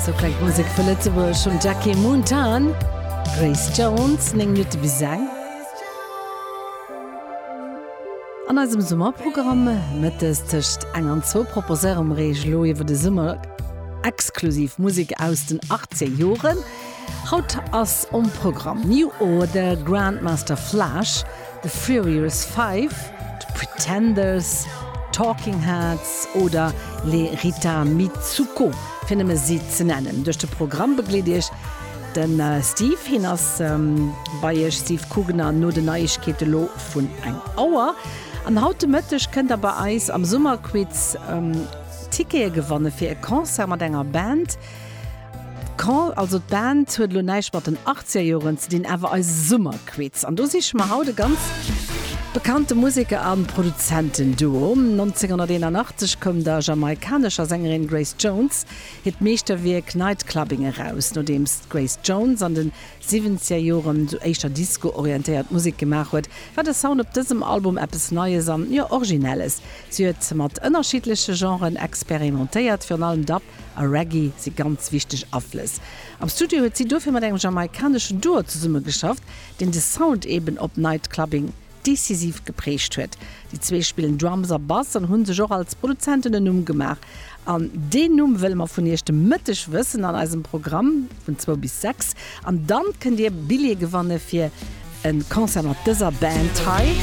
Sou klengt d'Musek vu Lëtzebuerg vum Jackie Mountain. Grace Jones, 9 Minutte bis eng. An eisem Summerprogramm mëttes tëscht eng an zwou proposéiere mer Iech elo iwwer de Summer exklusiv Musek aus den achtzéng Joren. Haut ass um Programm New Order, Grandmaster Flash, The Furious Five, The Pretenders, Talking Heads oder Les Rita Mitsouko, fir nëmme si ze nennen. Duerch de Programm begleet Iech de Steve. Hien ass bei Iech, Steve Kugener, no den Neiegkeete lo vun eng Auer. An haut de Mëtteg kënnt Der bei eis am Summerquiz Tickete gewanne fir e Concert mat enger Band, D'Call, also d'Band, huet elo näischt mat den Achtzigerjoren ze dinn, awer eise Summerquiz. An do siche mer haut e ganz bekannte Museker a Produzentenduo. 1981 koum der jamaikanescher Sängerin Grace Jones hiert Meeschterwierk Night Clubbing eraus. Nodeems d'Grace Jones an de Siwwenzigerjore sou éischter Disco-orientéiert Musek gemaach huet, war de Sound op dësem Album eppes Neies an, jo, Originelles. Si huet mat ënnerschiddleche Genren experimentéiert, virun allem Dub, a Reggae si ganz wichteg Aflëss. Am Studio huet si dofir mat engem jamaikaneschen Duo zesummegeschafft, deen de Sound eben op Night Clubbing decisiv geprägt huet. Déi zwee spillen Drums a Bass an hu sech och als Produzenten en Numm gemaach. An deen Numm wëlle mer vun iech de Mëtteg wëssen an eisem Programm. Vun zwou bis sechs. An dann kënnt dir Billjee gewanne fir e Concert mat dëser Band hei.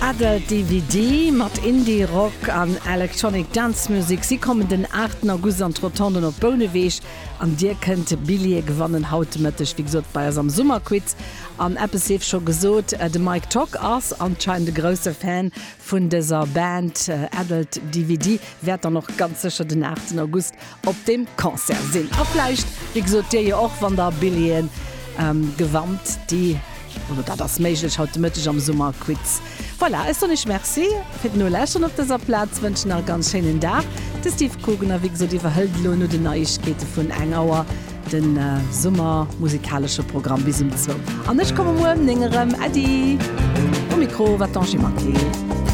Adult DVD mat Indie-Rock an Electronic Dance Music. Si kommen den 8 August an d'Rotonden op Bouneweg. An dir kënnt Billjee gewannen haut de Mëtteg, wéi gesot, bei eis am Summerquiz. An eppes sief scho gesot, De Mike Tock ass anscheinend e grousse Fan vun dëser Band. Adult DVD wäert dann och ganz sécher den 8 August op deem Concert sinn. A vläicht, wéi gesot, dir jo och, wann der Billjeeën gewannt, déi. Oder dat ass méiglech haut de Mëtteg am Summerquiz. Voilà, ech soen Iech Merci fir d'Noläschteren op dëser Plaz, wënschen nach e ganz schéinen Dag. De Steve Kogener, wéi gesot, iwwerhëlt elo no den Neiegkeete vun eng Auer de summermusikalesche Programm bis um zwou. An ech komme muer ëm néng erëm. Äddi! Um Mikro war d'Angie Maquet.